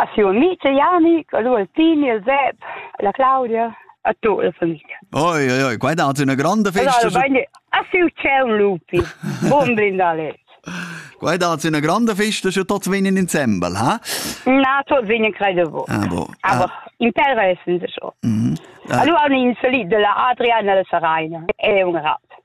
A siu amic e Janic, a lu Altini, al Sep, alla Claudia, a tut la famiglia. Oi, oi, oi, quai dat üna granda festa. Allora, a siu ciel lupi, buon brindalet. Quai dat üna granda festa schon tots vegnen insembel, ha? Na, tots vegnen credo bo. Ah, bo. Aber ah. interessant schon. Mm -hmm. Ah. Allora, un insolito della Adriana e la Saraina, è un rat.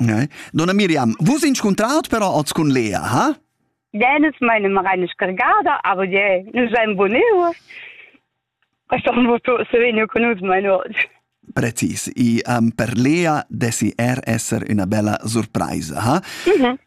Eh? Donna Miriam, vus inscuntraut però oz cun Lea, ha? Jenes meine Marianne scargada, aber je, nous seim bonur. Passaron voto se vegno con us meine oggi. Precis, e um, per Lea dessi er esser una bella surpresa, ha? Mm -hmm.